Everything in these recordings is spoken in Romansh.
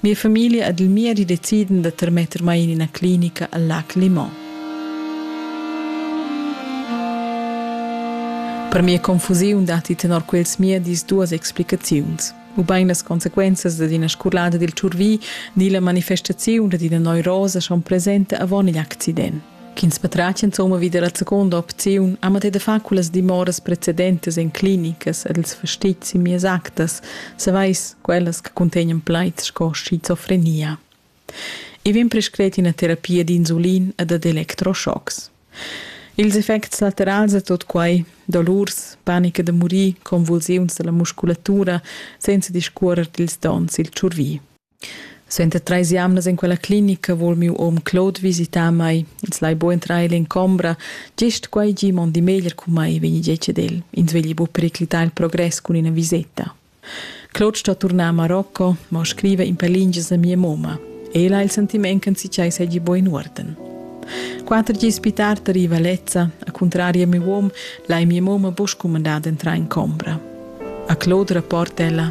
Mia famiglia ed il miedi decidan da termetter mai en ina clinica al Lac Limon. Per mia confusiun datti tenor quels miedis duas explicaziuns ubain las consequenzas dad ina scurlada dil tschurvi ni la manifestaziun dad ina neurosa schon presenta avon igl accident. Ch'ins patratg insomma vi dalla seconda opziun ha matei da far quellas dimoras precedentas en clinicas ed ils fastizs in mias actas, savais quellas che contegnan plaids sco schizofrenia. I vegn prescret ina terapia d'insulin e dad electroschocks. Ils effects laterals da tot quai, dolurs, panica da murir, convulsiuns dalla musculatura, senza discuorer dils dons il tschurvi. Suenter treis jamnas en quella clinica vul miu um Claude visitar mei. Els lai buc entrar ella en combra. Gest quei gi mondi meglier cun mei, vegni detg ed el. Ins vegli buc periclitar il progress cun ina viseta. Claude sto turnar a Marocco, ma scriva in per lingias a mia mamma. Ella ha il sentiment che si segui buin uorden. Quatter gis più tardi arriva Lezza. A contrario a mio uom, lai mia mamma buc scumandar d'entrar in combra. A Claude rapporta ella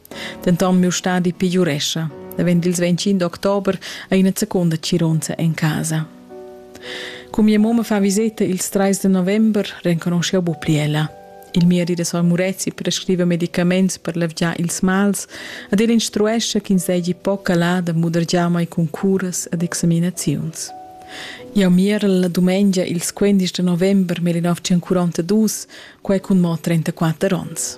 Denton miu stadi pegiurescha. La vend ils 25 d'october ha ina seconda cironza en casa. Cu mia mamma fa viseta ils 3 de november, renconosciu bu pli ella. Il miedi da Son Murezi prescriva medicaments per levgiar ils mals ed el instruescha ch'ins seigi poca là da mudergiar mai cun curas ed examinaziuns. Jau mierel la dumengia ils 15 de november 1942, quai cun mo 34 onns.